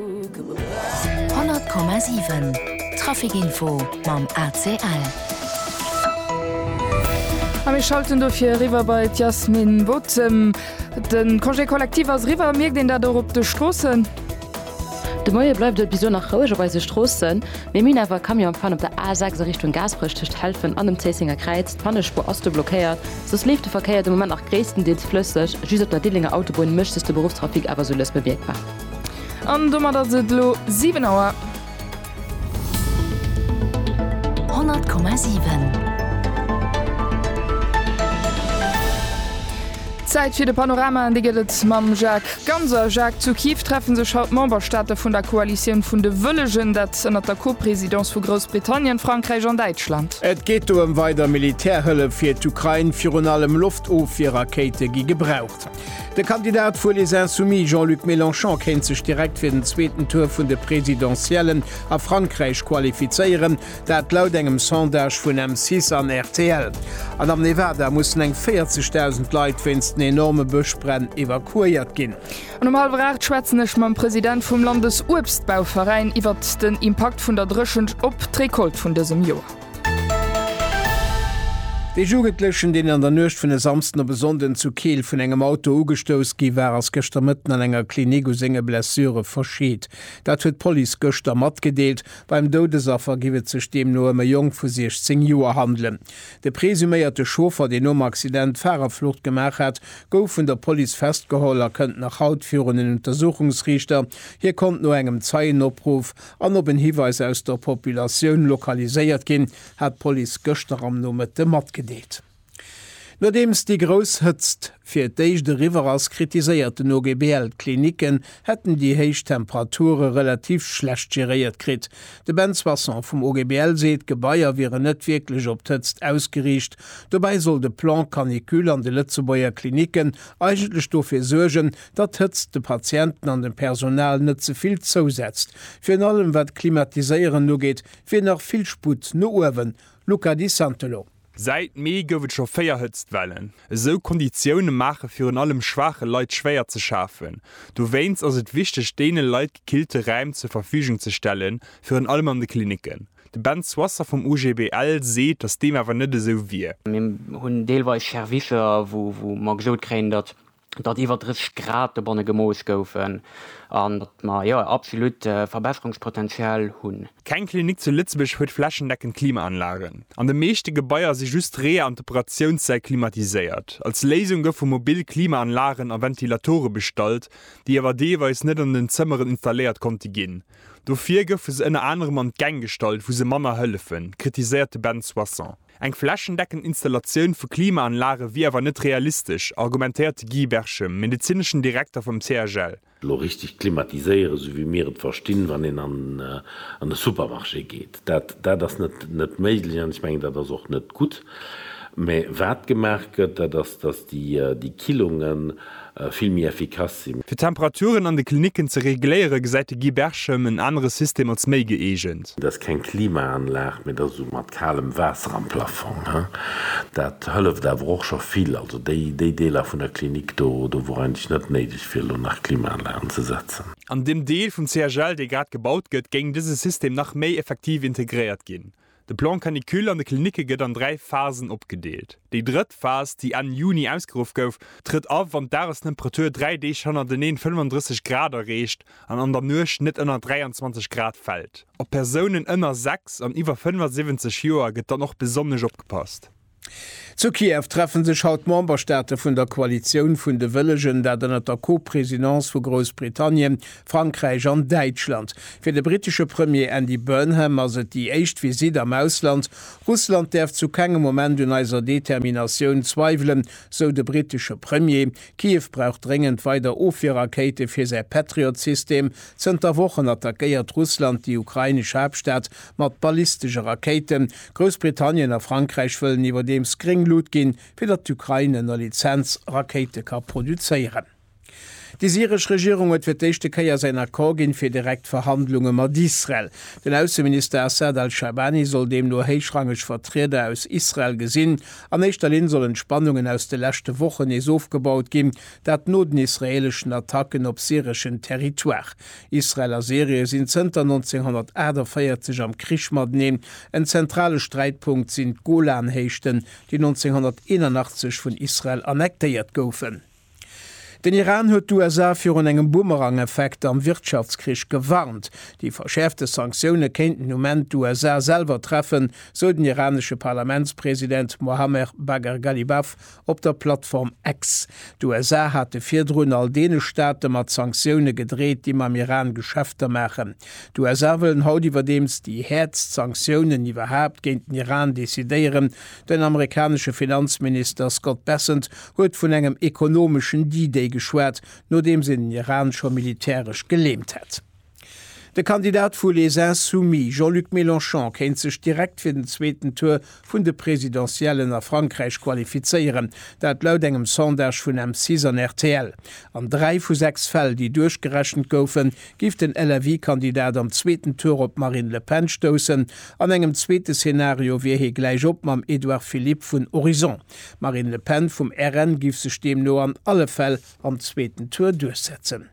100,7 Traficinfo mam ACL. A mir schalten dofir eriwwer bei d'Yasmin Bottem. De Congé collectif ass eriwwer. Mierkt een dat och op de Stroossen? De Moie bleift et bis elo nach roueg op eise Stroossen. Mir minn awer e Camion am Pan op der A 6 a Richtung Gaasperech tëscht Helfen an dem Zéissenger Kräiz. D'Pannespuer ass do blockéiert. Soss leeft de Verkéier de Moment nach gréisstendeels flësseg. Just op der Diddelénger Autobunn mécht sech de Beruffstrafic awer sou lëss bemierkbar. An domat ass et elo 7 Auer. 100,7 Zäit fir de Panorama an dee gëtt et mam Jacques Ganser. Jacques, zu Kiew treffe sech haut d'Memberstaate vun der Koalitioun vun de Wëllegen, dat ënnert der Co-Presidence vu Groussbritannien, Frankräich an Däitschland. Et geet do ëm weider Militärhëllef fir d'Ukrain, virun allem Loftofwier-Rakéite gi gebraucht. De Kandidat vu Les Insoumis Jean-Luc Mélenchon kéint sech direkt fir den zweeten Tour vun de Presidentiellen a Frankräich qualifizéieren, dat laut engem Sondage vun M6 an rtl. An am Nevada mussen eng 40.000 Leit wéinst den enorme Bëschbränn evakuéiert ginn. An um hallwer 8 schwätzen ech mam President vum Landesuebstbauveräin iwwert den Impakt vun der Dréchent op d'Recolte vun dësem Joer. Dee Jugendlechen, deen an der Nuecht vun e Samsden op e Sonnden zu Keel vun engem Auto ugestouss gi war, ass gëschter Mëtten an enger Klinik u senge Blessure verscheet. Dat huet d'Police gëschter matgedeelt. Beim Doudesaffer giff et sech deemno ëm e Jong vu 16 Joer handelen. De presuméierte Chauffer, deen nom Accident d'Farerflucht gemaach hat, gouf vun der Police festgeholl a kënnt nach haut virun en Untersuchungsriichter. Hie konnt no engem Zeienopruff An op en Hiweis aus der Populatioun lokaliséiert ginn, hat d'Police gëschter am Nomëtte matgedeelt. Nodeems déi grouss Hëtzt fir d'éischt eriwwer ass, kritiséiert den OGBL, d'Klinicken hätten déi héich Temperature relativ schlecht geréiert kritt. De Ben Soisson vum OGBL seet, d'Gebaier wieren net wierklech op d'Hëtzt ausgeriicht. Dobäi soll de Plan canicule an de Lëtzebuerger Klinicken eigentlech dofir suergen, datt d'Hëtzt de Patienten an dem Personal net ze vill zousetzt, virun allem wat d'Klimatiséieren ugeet, wier nach vill Sputt no uewen. Luca Di Santolo. Säit Mee gouf et scho véier Hëtztwellen. Esou Konditioune maache virun allem schwaache Leit schwéier ze schafen. Dowéinst ass et wichteg, deene Leit gekillte Räim zur Verfügung ze stellen, virun allem an de Klinicken. De Ben Soisser vum OGBL seet, datt deem awer net esou wier. Mir hunn deelweis Servicer, wou mer gesot kréien, datt datt iwwer 30 Grad dobonne gemooss goufen an datt mer, jo, absolut Verbesserungspotential hunn. Keng Klinik zu Lëtzebuerg huet flächendeckend Klimaanlagen. An de meeschte Gebaier si just d'Reeër an d'Operatiounssäll klimatiséiert. Als Léisung goufe mobil Klimaanlagen a Ventilatore bestallt, déi awer deelweis net an den Zëmmeren installéiert konnte ginn. Dofir goufe se ënner anerem an d'Gäng gestallt, wou se manner hëllefen, kritiséiert de Ben Soisson. Eng flächendeckend Installatioun vu Klimaanlage wier awer net realistesch, argumentéiert de Guy Berchem, medezineschen Direkter vum CHL. Elo richteg klimatiséieren, esou wéi mir et verstinn, wann een an e Supermarché geet, dat ass net méiglech. An ech mengen, dat ass och net gutt. Mä wat gemaach gëtt, dat ass, datt déi Killungen, vill méi effikass sinn. Fir d'Temperaturen an de Klinicken ze regléiere gesäit de Guy Berchem en anere System als méi gëeegent. Et ass keng Klimaanlag, mee et ass esou mat kalem Waasser am Plafong. Dat hëlleft awer och scho vill. Also déi Deeler vun der Klinik do, do wor eigentlech net néideg fir elo nach Klimaanlagen ze setzen. An deem Deel vum CHL, dee grad gebaut gëtt, géing dëse System nach méi effektiv integréiert ginn. De Plan canicule an de Klinicke gëtt an dräi Phasen opgedeelt. Déi drëtt Phas, déi Enn Juni ausgeruff gouf, trëtt a wann d'Dagestemperatur dräi Deeg hannerteneen 35 Grad erreecht an an der Nuecht net ënner 23 Grad fält. Op Persounen ënner 6 an iwwer 75 Joer gëtt dann och besonnesch opgepasst. Zu Kiew treffe sech haut d'Memberstaate vun der Koalitioun vun de Wëllegen, dat ënnert der Co-Presidence vu Groussbritannien, Frankräich an Däitschland. Fir de brittesche Premier Andy Burnham ass et déi éischt Visitt am Ausland. Russland däerf zu kengem Moment un eiser Determinatioun zweiwelen, sou de brittesche Premier. Kiew brauch dréngend weider Ofwierrakéite fir säi Patriot-System. Zënter Wochen attackéiert Russland déi ukrainesch Haaptstad mat ballistesche Rakéiten. Groussbritannien a Frankräich wëllen iwwerdeems gréng Lut ginn, fir datt d'Ukrain ënner Lizenz Rakéite ka produzéieren. Déi syresch Regierung huet fir d'éischte Kéier säin Accord ginn, fir direkt Verhandlunge mat Israel. Den Ausseminister Assad al-Shaabani soll deemno héichrangeg Vertrieder aus Israel gesinn. An éischter Linn sollen d'Spannungen aus de leschte Wochen nees ofgebaut ginn, dat no den israeeleschen Attacken op syreschen Territoire. Israel a Syrie sinn zënter 1948 am Krich mateneen. En zentrale Sträitpunkt sinn d'Golanhéichten, déi 1981 vun Israel annektéiert goufen. Den Iran huet d'USA virun engem Boomerang-Effekt am Wirtschaftskrich gewarnt. Déi verschäerfte Sanktioune kéinten um Enn d'USA selwer treffen, sou den iranesche Parlamentspresident Mohammer Bagher Ghalibaf Op der Plattform X. D'USA hate virdrun all deene Staate mat Sanktioune gedreet, déi mam Iran Geschäfter maachen. D'USA wëllen haut iwwerdeems déi häertst Sanktiounen iwwerhaapt géint den Iran decidéieren. Den amerikanesche Finanzminister Scott Bessent huet vun engem ekonomeschen D-Day geschwat, nodeems een den Iran scho militäresch geleemt hätt. De Kandidat vu Les Insoumis, Jean-Luc Mélenchon, kéint sech direkt fir den zweeten Tour vun de Presidentiellen a Frankräich qualifizéieren. Dat laut engem Sondage vun M6 an rtl. An dräi vu sechs Fäll, déi duerchgerechent goufen, géif den LFI-Kandidat am zweeten Tour op d'Marine Le Pen stoussen. An engem zweete Szenario wier hie gläich op mam Edouard Philippe vun Horizon. D'Marine Le Pen vum RN géif sech deemno an alle Fäll am zweeten Tour duerchsetzen.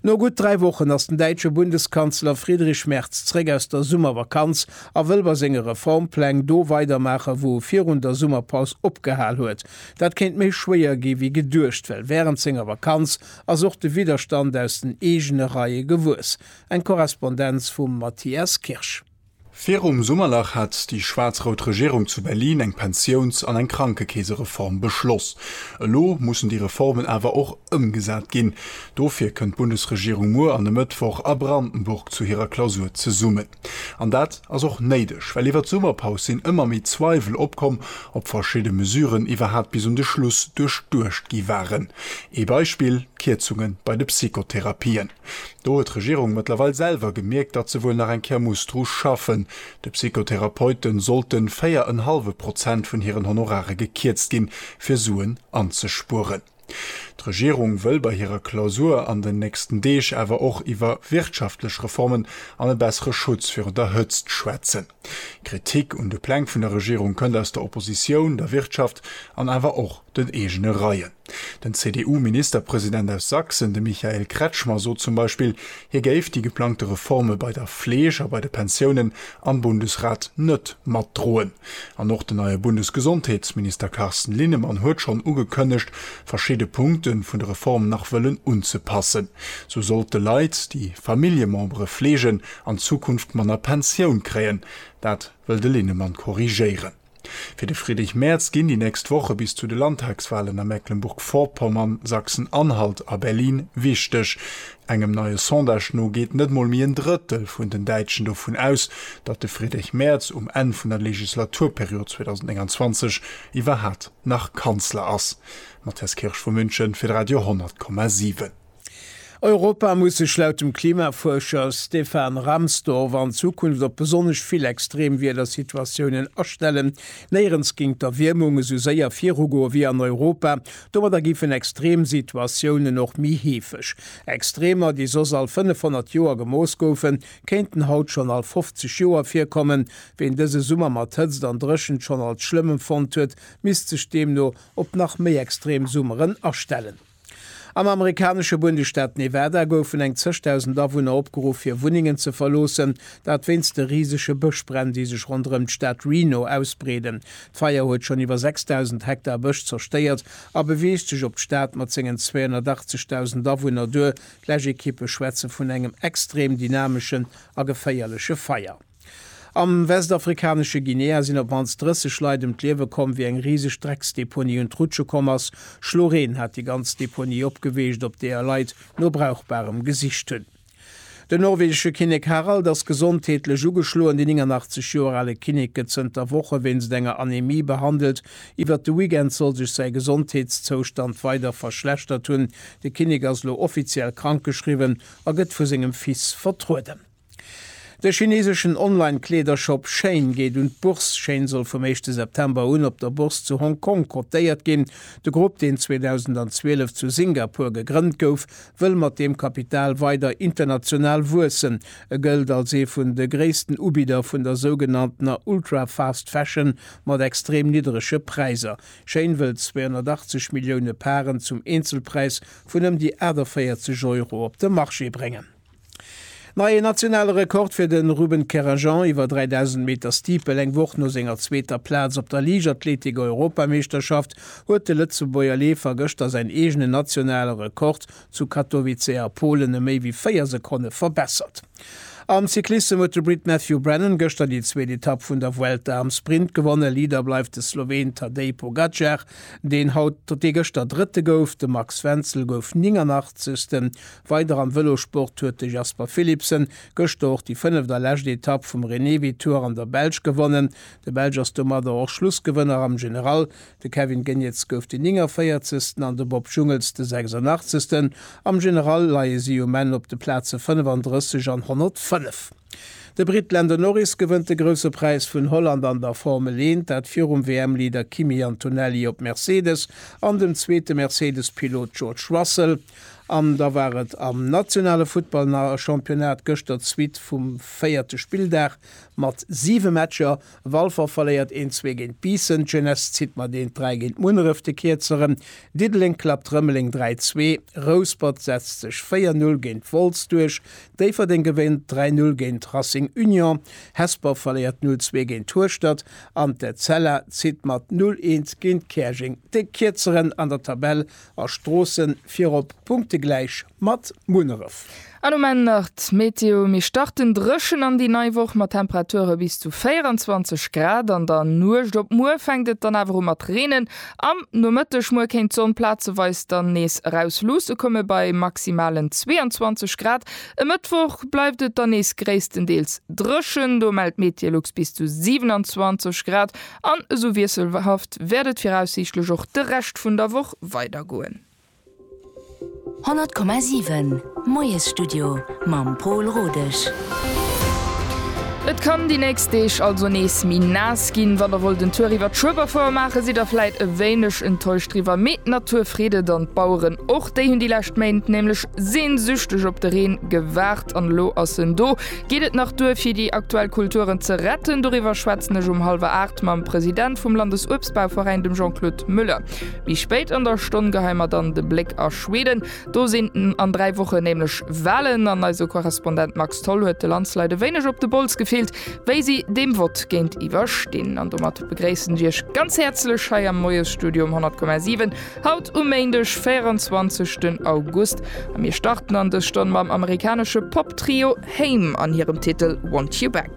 No gutt dräi Wochen ass den däitsche Bundeskanzler Friedrich Merz zréck aus der Summervakanz a wëll bei senge Reformpläng do weidermaache wou e virun der Summerpaus opgehal huet. Dat kéint méi schwéier gi wéi geduecht, well wärend senger Vakanz ass och de Widderstand aus den eegene Reie gewuess. Eng Korrespondenz vum Matthias Kirsch. Virum Summerlach hat déi schwaarz-rout Regierung zu Berlin eng Pensiouns an eng Krankekeesereform beschloss. Elo mussen déi Reformen awer och ëmgesat ginn. Dofir kënnt d'Bundesregierung muer an e Mëttwoch a Brandenburg zu hirer Klausur zesummen. An dat ass och néideg, well iwwer d'Summerpaus sinn ëmmer méi Zweiwel opkomm, ob verschidde Mesuren iwwerhaapt bis un de Schluss duerchduecht gi waren. Ee Beispill, d'Kierzunge bei de Psychotherapien. Do huet d'Regierung mëttlerweil selwer gemierkt, datt se wuel nach eng Kéier muss dru schaffen. De Psychotherapeute sollte 4 en hallwe Prozent vun hiren Honorare gekierzt ginn, fir Suen anzespueren. D'Regierung wëll bei hirer Klausur an den nächsten Deeg awer och iwwer wirtschaftlech Reformen an e bessere Schutz virun der Hëtzt schwätzen. Kritik un de Pläng vun der Regierung kënnt aus der Oppositioun, der Wirtschaft an awer och den eegene Reien. Den CDU-Ministerpresident aus Sachsen, de Michael Kretschmer, sot zum Beispill, hie géif déi geplangte Reforme bei der Fleeg a bei de Pensiounen am Bundesrat net matdroen. An och den neie Bundesgesondheetsminister Carsten Linnemann huet schonn ugekënnegt, verschidde Punkte vun de Reform nach wëllen unzepassen. Sou sollt de Leit, déi Familljemembere fleegen, an Zukunft manner Pensioun kréien, dat wëll de Linnemann korrigéieren. Fir de Friedrich Merz ginn déi nächst Woche bis zu de Landtagswalen a Mecklenburg-Vorpommern, Sachsen-Anhalt a Berlin wichteg. Engem neie Sondage no geet net mol méi en Drëttel vun den Däitschen dovun aus, datt de Friedrich Merz um Enn vun der Legislaturperiod 2029 iwwerhat nach Kanzler ass. Matthias Kirsch vu München fir d'Radio 100,7. Europa muss sech laut dem Klimafuerscher Stefan Rahmstorf an Zukunft op besonnesch vill Extremwiedersituatiounen astellen. Néierens géing d'Erwiermung esou séier virugoe wéi an Europa. Domadder géifen Extremsituatiounen och méi heefeg. Extremer, déi soss all 500 Joer gemooss goufen, kéinten haut schonn all 50 Joer virkommen. Ween dëse Summer mat Hëtzt an Dréchent schonn als schlëmm empfonnt huet, misst sech deemno op nach méi extrem Summeren astellen. Am amerikanesche Bundesstaat Nevada goufen eng zeg dausend Awunner opgeruff hir Wunnengen ze verloossen, dat wéinst de risege Bëschbränn, déi sech ronderëm d'Stad Reno ausbreeden. D'Feier huet schonn iwwer 6.000 Hektar Bësch zerstéiert a beweegt sech op d'Stad mat sengen 280 dausend Awunner duer. D'Läschekippe schwätze vun engem extrem dynameschen a geféierleche Feier. Am westafrikanesche Guinea sinn op d'mannst 30 Leit ëm d'Liewe komm, wéi eng riseg Drecksdeponie un d'Rutsche komm ass. Schloreen hat déi ganz Deponie opgeweecht, op deeër Leit no Brauchbarem gesicht hunn. Den norwegesche Kinnek Harald ass gesondheetlech ugeschloen. Den 89 Joer ale Kinnek gëtt zënter Woche wéinst enger Anemie behandelt. Iwwert de Weekend soll sech säi Gesondheetszoustand weider verschlechtert hunn. De Kinnek ass elo offiziell krankgeschriwwen a gëtt vu sengem Fils vertrueden. De chineseschen Online-Kleedershop Shein geet un d'Bourse. Shein soll vum éischte September un op der Bourse zu Hong Kong kotéiert ginn. De Grupp, deen 2012 zu Singapur gegrënnt gouf, wëll mat deem Kapital weider international wuessen. E gëllt als ee vun de gréissten Ubidder vun der sougenanntener Ultra-Fast Fashion mat extrem nidderege Präisser. Shein wëllt 280 Millioune Paren zum Eenzelpräis vun ëm déi 48 Euro op de Marché bréngen. Neie nationale Rekord fir de Ruben Kerrajan iwwer 3.000 Meter Steeple. Eng Woch no senger zweeter Plaz op der Liichtathletik-Europameeschterschaft huet de Lëtzebuerger Leefer gëschter säin eegenen nationale Rekord zu Katowice a Polen ëm méi wéi 4 Sekonne verbessert. Am Cyclissem huet de Brit Matthew Brennan gëschter déi zweet Etapp vun der Vuelta am Sprint gewonnen. Leader bleift de Sloween Tadej Pogacar, deen haut dee gëschter Drëtte gouf. De Max Wenzel gouf 89. Weider am Vëlosport huet de Jasper Philipsen gëschter och déi fënneft a lescht Etapp vum Renewi Tour an der Belsch gewonnen. De Belsch ass domadder och Schlussgewënner am General. De Kevin Geniets gouf den 49. an de Bob Jungels de 86. Am General leie si um Enn op de Plaze 35 an 105. De Britt Lando Norris gewënnt de Grousse Präis vun Holland an der Formel 1, dat virum WM-Leader Kimi Antonelli op Mercedes an dem zweete Mercedes-Pilot George Russell. An da war et am nationale Futtballchampionnat gëschter d'Suite vum véierte Spilldag mat siwe Matcher, Walfer verléiert een zwee géint Biissen, d'Jeunesse zitt mat eent dräi géint Munneref, de Kierzeren Diddeleng klappt Rëmeleng dräi zwee, Rouspert setzt sech véier null géint Wolz duerch, Déifferdeng gewénnt dräi null géint Racing Union, Hesper verléiert null zwee géint Hueschtert an d'Etzella zitt mat null eent géint Käerjeng. De Kierzeren an der Tabell A Stroossen virop punktegläich mat Munneref. An um Enn nach d'Meteo, Mir starten dréchen an déi nei Woch mat Temperature bis zu 24 Grad. An der Nuecht op muer fänkt et dann awer u mat reenen. Am Nomëtteg muer kéint d'Sonn plazeweis dann nees eraus luusse komme bei maximalen 22 Grad. E Mëttwoch bleift et dann nees gréisstendeels dréchen, do mellt d'Metilux bis zu 27 Grad. An esou wiesselhaft wäert et viraussiichtlech och de Rescht vun der Woch weidergoen. 100,7 Moiesstudio mam Pol Rodesch. Et kann déi nächst Deeg also nees méi naass ginn. Wann der wollt en Tour iwwert Schueberfouer maachen, sidd der vläit e wéineg enttäuscht driwwer, mee d'Natur freet et an d'Baueren och. Déi hunn déi lescht Méint nämlech sehnsüchteg op de Reen gewaart an elo ass en do. Geet et nach duer fir déi aktuell Kulturen ze retten? Doriwwer schwätzen ech um hallwer 8 mam President vum Landesuebstbauveräin, dem Jean-Claude Muller. Méi spéit an der Stonn geheie mer dann de Bléck a Schweden. Do sinn an 3 Wochen nämlech Walen an eise Korrespondent Max Tholl huet de Landsleit e wéineg op de Bols gefillt, wéi si deem Vott géintiwwer stinn. An domat begréissen ech Iech ganz häerzlech hei am Moiesstudio um 100,7. Haut um Méindeg 24 den August a mir starten an dës Stonn mam amerikanesche Pop-Trio Haim an hirem Titel Want You Back.